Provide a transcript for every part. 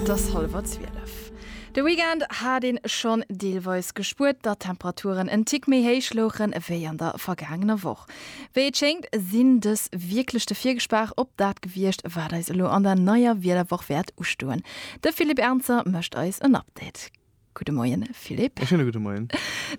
Et ass hallwer zwielef. De Weekend hat een schonn deelweis gespuert, datt d'Temperaturen en Tick méi héich louchen, ewéi an der vergaangener Woch. Wéi et schéngt, sinn dës wierklech de Virgespaach op dat gewiescht, wat eis elo an der neier Wiederwoch wäert ustoen. De Philippe Ernzer mécht eis en Update. Gudde Moien, Philippe. E schéine gudde Moien.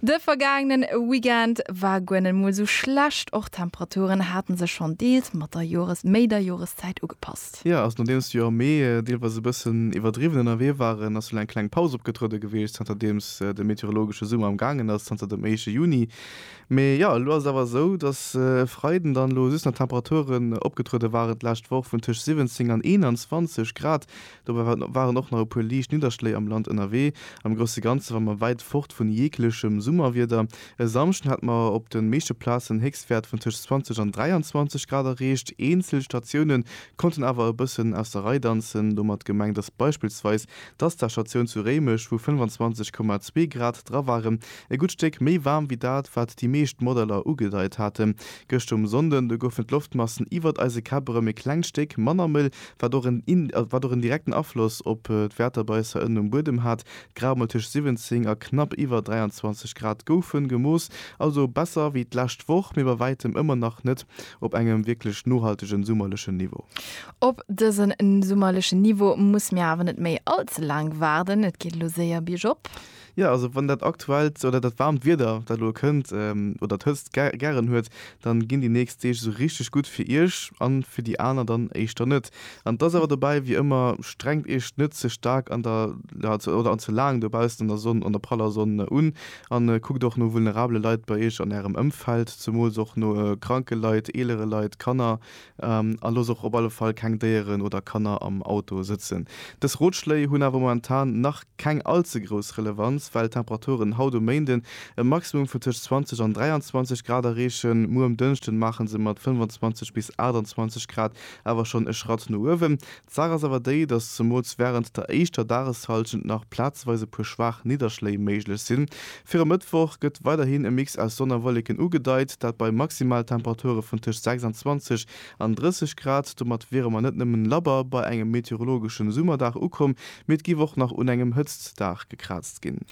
De vergaangenen Weekend war guer net mol sou schlecht. Och d'Temperaturen haten sech schonn deels mat der Jores méi der Joreszäit ugepasst. Jo, also nodeems jo am Mee deelweis e bëssen iwwerdriwwen ënnerwee waren, ass elo eng kleng Paus opgetruede gewiescht, zanterdeems de meteorologesche Summer am gaangen ass, zanter dem éischte Juni. Mee jo, elo ass et awer esou, dass e Freiden dann elo just nach Temperaturen opgetruede waren d'lescht Woch vun tëscht 17 an 21 Grad. Dobäi waren och nach e puer liicht Nidderschléi am Land ënnerwee. Am grousse Ganze war mer wäit fort vun jeeglechem Summerwieder. E Samschden hat mer op de meeschte Plazen Héchstwäert vun tëscht 20 an 23 Grad erreecht. Eenzel Statioune konnten awer e bëssen aus der Rei danzen. Domat gemengt ass beispillsweis d'Asta-Statioun zu Réimech, wou 25,2 Grad dra waren. E gutt Stéck méi waarm wéi dat, wat déi meescht Modeller ugedeit haten. Gëscht um Sonnden, do goufen d'Loftmassen iwwert eise Käpp erëm e klengt Stéck manner mëll, wat och en in wat och en direkten Afloss op d'Wäerter bei eis hei ënnen um Buedem hat. D'Grauemol tëscht 17 a knapp iwwer 23 Grad goufen gemooss, also besser wéi d'lescht Woch, mee bei wäitem ëmmer nach net op engem wierklech nohaltegen summerlechen Niveau. Op dësen summerlechen Niveau musse mir awer net méi all ze laang waarden, et geet elo séier biergop. Jo, also wann dat aktuellt oder dat waarmt Wieder, dat elo kënnt, oder d'Hëtzt gären huet, dann ginn déi nächst Deeg esou richteg gutt fir Iech an fir déi aner dann éischter net. An et ass awer dobäi wéi ëmmer, Strengt Iech net ze staark an der, oder an ze laang dobaussen an der Sonn, an der praller Sonn un an kuckt och no vulnerabele Leit bei Iech an Ärem Ëmfeld, zemools och no kranke Leit, eelere Leit, Kanner, A looss och op alle Fall keng Déieren oder Kanner am Auto sëtzen. Dës Rotschléi hunn awer momentan nach keng all ze grouss Relevanz, well d'Temperaturen haut um Méinden e Maximum vun tëscht 20 an 23 Grad erreechen. Muer um Dënschden maachen se mat 25 bis 28 Grad awer schonn e Schratt no uewen. D'Saach ass awer déi, dass zemools wärend der éischter Dageshallschent nach plazeweis e puer schwaach Nidderschléi méiglech sinn. Fir e Mëttwoch gëtt weiderhin e Mix aus Sonn a Wolleken ugedeit, dat bei Maximaltemperature vun tëscht 26 an 30 Grad. Domat wiere mer net nëmmen labber bei engem meteorologeschen Summerdag ukomm, mee et géif och nach un engem Hëtztdag gekraazt ginn.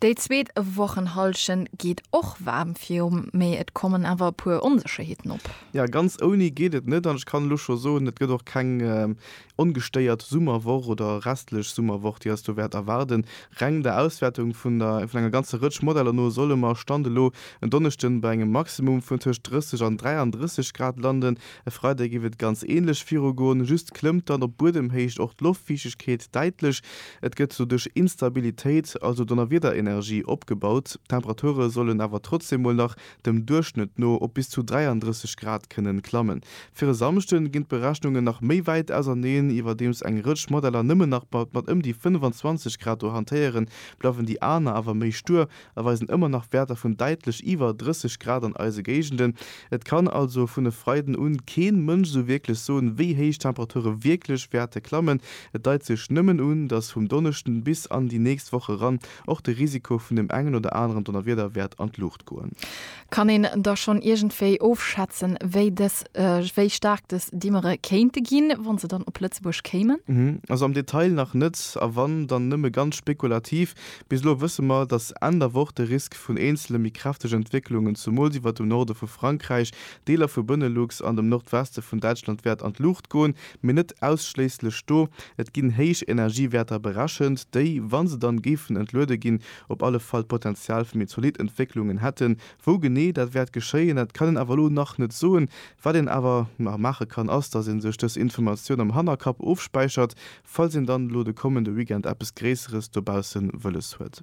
Déi zweet Wochenhallschent geet och waarm virum, mee et kommen awer e puer Onsécherheeten op. Jo, ganz ouni geet et net an ech kann elo scho soen, et gëtt och keng ongestéiert Summerwoch oder restlech Summerwoch, déi eis do wäert erwaarden. Reng der Auswäertung vun der vun enger ganzer Rëtsch Modeller no solle mer, Stand elo, en Donneschden bei engem Maximum vun tëscht 30 an 33 Grad landen. E Freideg géif et ganz änlech virugoen, just klëmmt dann op Buedemhéicht och d'Loftfiichtegkeet däitlech. Et gëtt doduerch Instabilitéit, also Donnerwiederenergie, opgebaut. D'Temperature sollen awer trotzdem mol nach dem Duerchschnëtt no op bis zu 33 Grad kënnen klammen. Fir e Samschden ginn d'Berechnungen nach méi wäit auserneen. Iwwerdeems eng Rëtsch Modeller nëmmen nach mat ëm déi 25 Grad do hantéieren, bleiwen déi aner awer méi stuer a weisen ëmmer nach Wäerter vun däitlech iwwer 30 Grad an eise Géigenden. Et kann also vun e Freiden un keen Mënsch esou wierklech soen, wéi héich d'Temperature wierklech wäerte klammen. Et deit sech nëmmen un, dass vum Donneschden bis an déi nächst Woch eran Och de Risiko vun dem engen oder aneren Donnerwieder wäert an d'Luucht goen. Kann een da schonn iergendwéi ofschätzen, wéi dës, wéi staark dës Dimmere kéinte ginn, wann se dann op Lëtzebuerg kéimen? Also am Detail nach net, a wann, dann nëmme ganz spekulativ. Bis elo wësse mer, datt Enn der Woch de Risk vun eenzele méi kräftege Entwécklungen, zumools iwwert dem Norde vu Frankräich, Deeler vu Benelux an dem Nordweste vun Däitschland wäert an d'Luucht goen, Mee net ausschléisslech do. Et ginn héich Energiewäerter berechent, déi, wa se dann géifen entluede ginn, op alle Fall d'Potenzial fir méi zolidd Entwécklungen hätten. Wou genee dat wäert geschéien, dat kann een awer elo nach net soen. Wat een awer nach maache kann, ass, dass ee sech dës Informatioun am Hannerkapp ofspäichert, falls een dann elo de kommende Weekend eppes Gréisseres dobausse wëlles huet.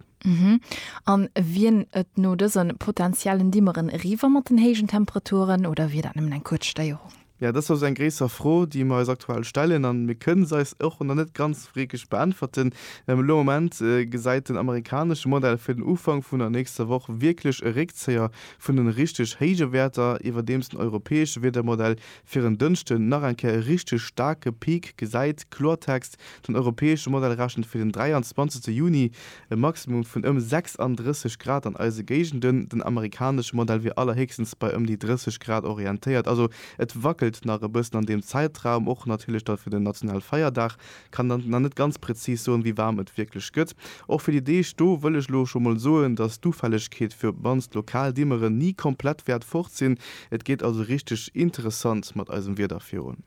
An wien et no dëse potentiellen Dimmeren eriwwer mat den héijen Temperaturen, oder wier dat nëmmen eng kuerz Stéierung? Jo, dass ass eng gréisser Fro, déi mer eis aktuell stellen, a mir kënne se eis och nach net ganz wierklech beäntwerten. Elo am Moment gesäit den amerikanesche Modell fir den Ufank vun der nächster Woch wierklech e Réckzéier vun den richteg héije Wäerter, iwwerdeems den europäesche Wiedermodell fir en Dënschden nach eng Kéier e richteg staarke Peak gesäit. Kloertext, Den europäesche Modell rechent fir den 23 Juni e Maximum vun ëm 36 Grad an eise Géigenden, den amerikanesche Modell wier allerhéchstens bei ëm déi 30 Grad orientéiert. Also et wackelt nach e bëssen an deem Zäitraum, och natierlech da fir den nationale Feierdag. Kann dann nach net ganz prezis soen, wéi waarm et wierklech gëtt. Och fir déi Deeg do wëll ech elo scho mol soen, dass d'Ufällegkeet fir, wann s lokal Dimmeren ni komplett wäert fort sinn, Et geet also richteg interessant mat eisem Wieder virun.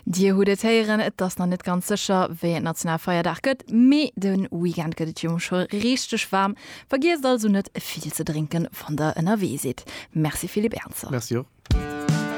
Dir hutt et héieren, et ass nach net ganz sécher, wéi et Nationalfeierdag gëtt, mee de Weekend gëtt et jo scho richteg waarm. Vergiesst also net, vill ze drénken, wann der ënnerwee sidd. Merci Philippe Ernzer. Merci och.